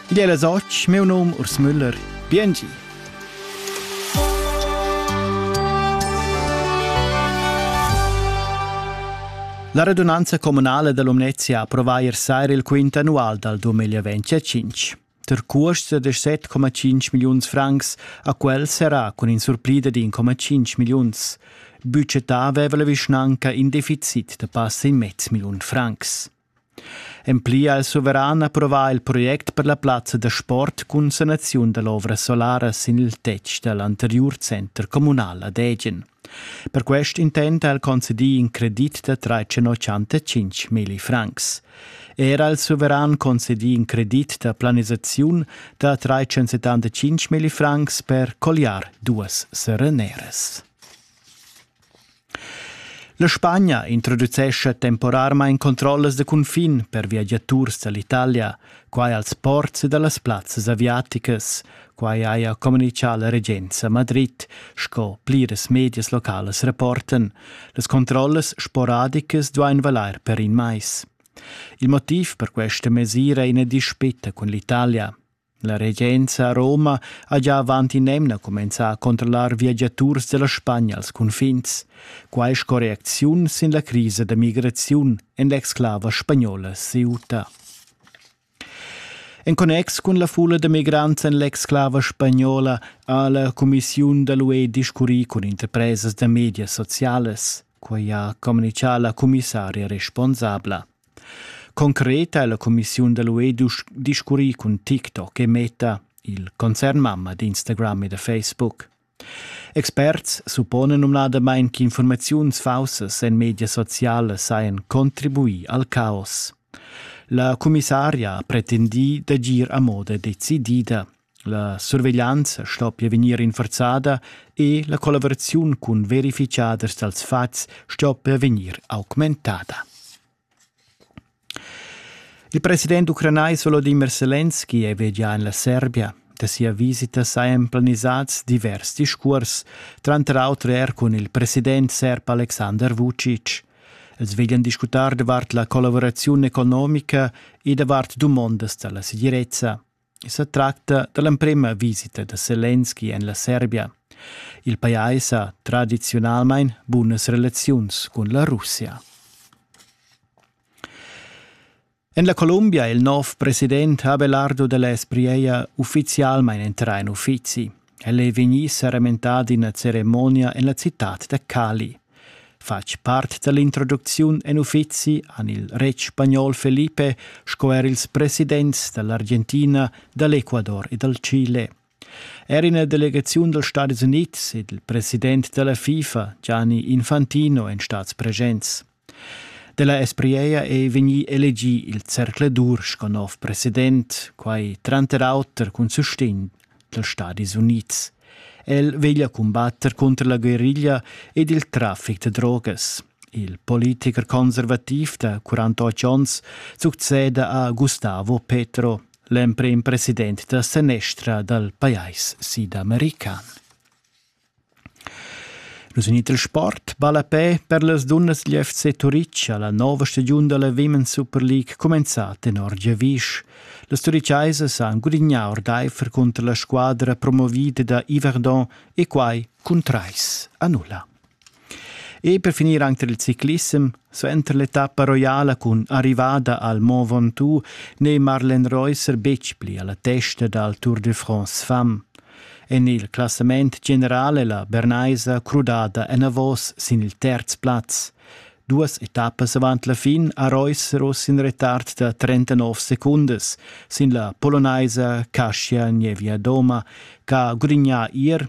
Id è la soc, meu nom Urs Müller. Biengi. La redunanza communale dell'Umnezia approva ier sera il quint annual dal 2025. Der cuost da 7,5 milliuns francs a quel serà cun in surplida di 1,5 milliuns. Budgetà aveva la vischnanca in deficit da passa in mezz milliun francs. En pli ha il suveran approvà il project per la plazza da sport cun sanaziun da l'ovra solara sin il tetg da l'anteriur center communal ad Ägen. Per quest intent ha el concedì in credit da 385 milli francs. Era il suveran concedì in credit da planisaziun da 375 milli francs per colliar duas sereneras. La Spagna introducescha temporarmain controllas da cunfin per viagiaturs da l'Italia, quai als ports ed a las plazzas aviaticas. Quai haja communitgà la regenza a Madrid, sco pliras medias localas reportan. Las controllas sporadicas duain valair per in mais. Il motiv per questa mesira è ina dispita cun l'Italia. La regenza a Roma ha gia avant in'emna cumenzà a controllar viagiaturs da la Spagna als cunfins, quai sco reacziun sin la crisa da migraziun en l'exclava spagnola Ceuta. En connex cun la fulla da migrants en l'exclava spagnola ha la cumissiun da l'UE discurrì cun interpresas da medias socialas. Quai ha communichà la commissaria responsabla. Concret ha la cumissiun da l'UE discurrì cun TikTok e Meta, il concernmamma d'Instagram e da Facebook. Experts supponen numnadamain ch'infurmaziuns faussas en medias socialas sajan contribuì al caos. La commissaria ha pretendì d'agir a moda decidida, La surveglianza sto pia vegnir rinforzada e la collaveraziun cun verifichaders dals fatgs sto pia vegnir augmentada. Il president ucranais Volodymyr Selenski è vegià en la Serbia. Da sia visita sajan planisads divers discurs, tranter auter er cun il president serb Aleksandar Vucic. Els veglian discutar davart la collaveraziun economica e davart dumondas da la segirezza. sa tracta da l'emprema visita da Selenski en la Serbia. Il pajais ha tradiziunalmain bunas relaziuns cun la Russia. En la Columbia il nov president Abelardo de l'Esprieia ufficialmain entrà en uffizi. El ei vegnì serementà d'ina ceremonia en la citad da Cali. Fatg part dall'introducziun en uffizi han il retg spagnol Felipe sco er ils presidents dall'Argentina, dall'Ecuador e dal Chile. Er ina delegaziun dals Stadis Unids ed il president dalla FIFA, Gianni Infantino, èn stads presents. Della Esprieia ei vegni elegi il zercladur sco nov president, quai tranter auter cun sustegn dals Stadis Unids. El veglia combatter contro la guerriglia ed il traffic da drogas. Il politiker conservativ da 48 onns succeda a Gustavo Petro, l'emprim president da senestra dal pajais sidamericano. Nus in iter sport ballapè per las dunnas dil FC Turitg ha la nova stagiun dalla Women's Super League cumenzà tenor giavisch. Las turichaisas han gudignà ordaifer cunter la squadra promovida da Yverdon e quai cun trais a nulla. E per finir anche il ciclissem, suenter l'etappa roiala cun arrivada al Mont Ventoux n'è Marlen Reusser betg pli alla testa dal Tour de France fam. En il classament generale la Bernaisa crudada enavos sin il terz plaz. Duas etappas avant la fin ha Reusser oz in retard da 39 secundas sin la polonaisa Kasia Nevia-Doma, ch'ha gudignà ier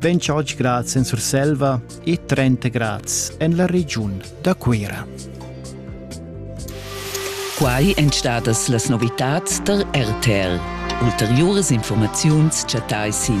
28 grads en Surselva e 30 grads en la regiun da Cuira. Quai èn stadas las novitads tar RTL. Ulteriuras informaziuns chattai sin